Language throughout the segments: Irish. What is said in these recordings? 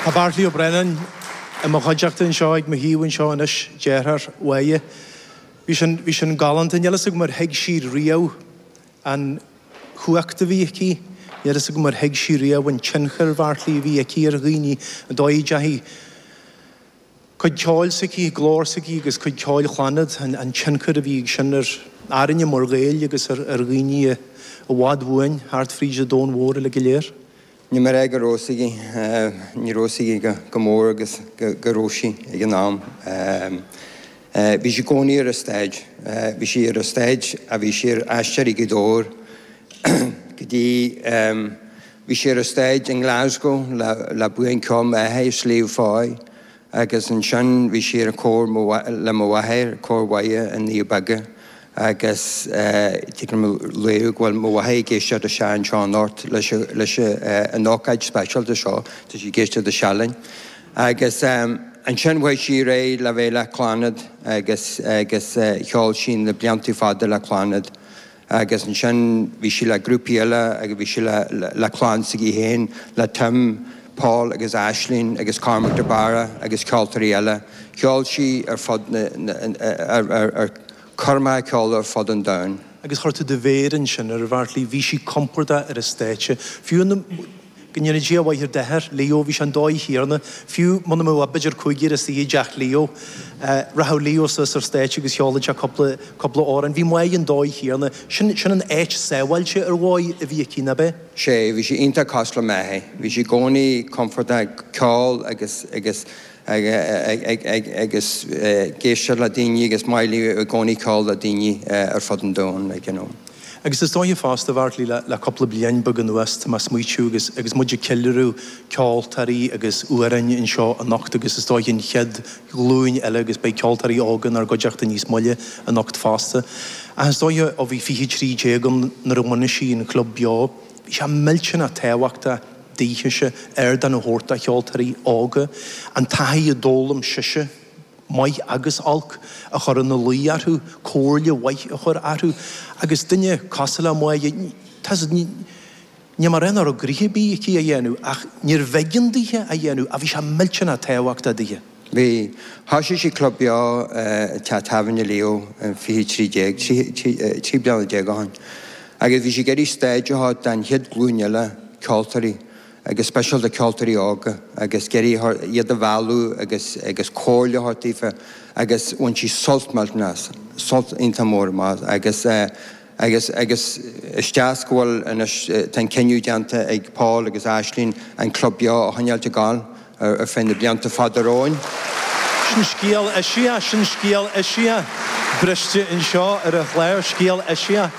Tá Bartley Ó Braonáin i mo chuideachta anseo, ag mo thaobh anseo anois, deartháir Mhoya. Bhí sin, bhí sin galánta. Níl fhios agam ar thuig sí riamh an chumhacht a bhí aici. Níl fhios agam ar thuig sí riamh an tionchar, a Bheartlaí, a bhí aici ar dhaoine. An dóigh a dteachaidh cuid ceoil s'aici, glór s'aici agus cuid ceoil Chlannad, an, an tionchar a bhí ag sin ar, orainne mar Ghaeil agus ar, ar dhaoine i bhfad uainn thart fríd an domhan mhór uilig go léir. Ní mé réidh go raibh 's aici, ní raibh 's aici chomh mór agus go raibh sí ag an am. Bhí sí i gcónaí ar an stáitse, bhí sí ar an stáitse, bhí sí ar Aisteoirí Ghaoth Dobhair go dtí, bhí sí ar an stáitse i nGlasgow le buíon ceoil m'athara, Sliabh Foy Agus ansin bhí sí ar an chór mo mháth, le mo mháthair, Cór Mhuire na nDoirí Beaga, agus tig liom a rá libh go bhfuil mo mháthair ag éisteacht isteach anseo anocht, leis a, leis a, an ócáid speisialta seo, tá sí ag éisteacht isteach linn. Agus ansin chuaigh sí ar aghaidh le bheith le Clannad agus, agus cheol sí na bliantaí fada le Clannad. agus ansin bhí sí le grúpaí eile agus bhí sí le, le clann s'aici féin, le Tim, Paul agus Aisling agus Cormac de Barra agus ceoltóirí eile. Cheol sí ar fud na, na, ar, ar, ar, chuir Moya ceol ar fud an domhain. Agus chuir tú do mhéar ansin air, a Bheartlaí, bhí sí compordach ar an stáitse, fiú na. Go ndéana Dia a mhaith ar d'athair, Leo, bhí sé an dóigh chéanna, fiú muna mbeadh ach b'fhéidir cúigear istigh i dteach Leo. Rachadh Leo suas ar an stáitse agus cheolfadh sé cúpla, cúpla amhrán. Bhí Moya an dóigh chéanna. Sin, sin an áit sábháilte ar dhóigh a bhí aici, nárbh é? Sé, bhí sí iontach cosúil le m'athair. Bhí sí i gcónaí compordach ag ceol agus, agus agus ag éisteacht le daoine agus maith léi i gcónaí ceol le daoine ar fud an domhain like you know. Agus is dóiche fosta a Bheartlaí le cúpla bliain beag anuas tá mé a' smaoitiú agus agus muid ag ceiliúradh ceoltóirí agus amhráin anseo anocht agus is dóiche an chéad ghlúin eile agus beidh ceoltóirí óga inár gcuideachta níos moille anocht fosta ach is dóiche ó bhí fiche trí déag ann nuair a bhunaigh sí an Clubeo bhí sé millteanach tábhachtach daoithese ardán a thabhairt do cheoltóirí óga, an taithí a d'fhoghlaim sise, maith agus olc, a chur ina luí orthu, comhairle mhaith a chur orthu, agus duine cosúil le Moya, tá sa, ní mar aon orthu gcroíthe bídh aici a dhéanamh, ach níorbh éigean daoithe a dhéanamh, ach bhí sé millteanach tábhachtach daoithe. Bhí. Thoisigh sí club beo i teach tábhairne Leo in fiche a trí déag, trí, trí bliana déag ó shoin, agus bhí sí ag iarraidh stáitse a thabhairt do'n chéad glúin eile ceoltóirí agus speisialta ceoltóirí óga agus ag iarraidh iad a mhealladh agus, agus comhairle a thabhairt daofa agus bhain sí sult millteanach as, sult iontach mór as agus eh, Agus, agus, is deas go bhfuil anois, tá an cinneadh déanta ag Paul agus Aislínn an Club Beo a choinneáilt ag gabháil ar, ar feadh na blianta fada romhainn. Sin scéal eisiach, sin scéal eisiach briste anseo ar an chlár, scéal eisiach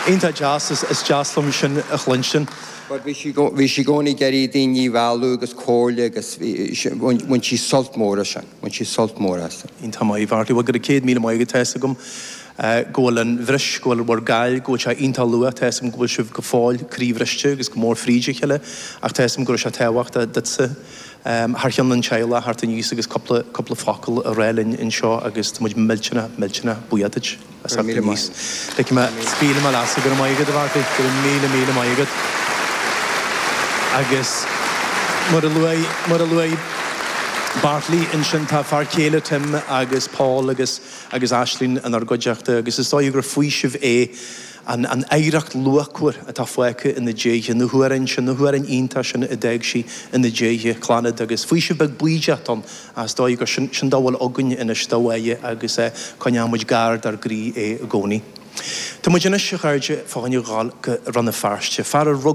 iontach deas, is, is deas liom sin a chluinstin. Bhuel, bhí sí, bhí sí i gcónaí ag iarraidh daoine a mhealladh agus comhairle agus bhí, bhain, bhain sí sult mór as sin, bhain sí sult mór as sin. Iontach maith, Bhartley, bhuel go raibh céad míle maith agat, tá 'fhios agam. go bhfuil an bhris, go bhfuil bhur gcaill, go bhfuil sé iontach luath, tá 'fhios agam go bhfuil sibh go fóill croíbhriste agus go mór fríd a chéile ach tá 'fhios agam go raibh sé tábhachtach duitse thar cheann an teaghlaigh a theacht aníos agus cúpla, cúpla focal a rá linn anseo agus tá muid millteanach, millteanach buíoch duid as theacht aníos. Go raibh míle, míle maith agat. Go raibh maith agat a Bhartley, go raibh míle, míle maith agat. Agus mar a luaigh, mar a luaigh Bartley ansin tá fear céile Tim agus Paul agus agus Aislínn inár gcuideachta, agus is dóigh gur faoiseamh é an an oidhreacht luachmhar atá fágtha ina diaidh, na hamhráin sin, na hamhráin iontacha sin a d'fhág sí ina diaidh, Clannad, agus faoiseamh beag baoideach ann is dóigh gur sin, sin a bhfuil againn anois de Mháire agus coinneoimid gar dár gcroí é i gcónaí. Tá muid anois, a chairde, fá choinne a dhul go Rann na Feirste. Fear a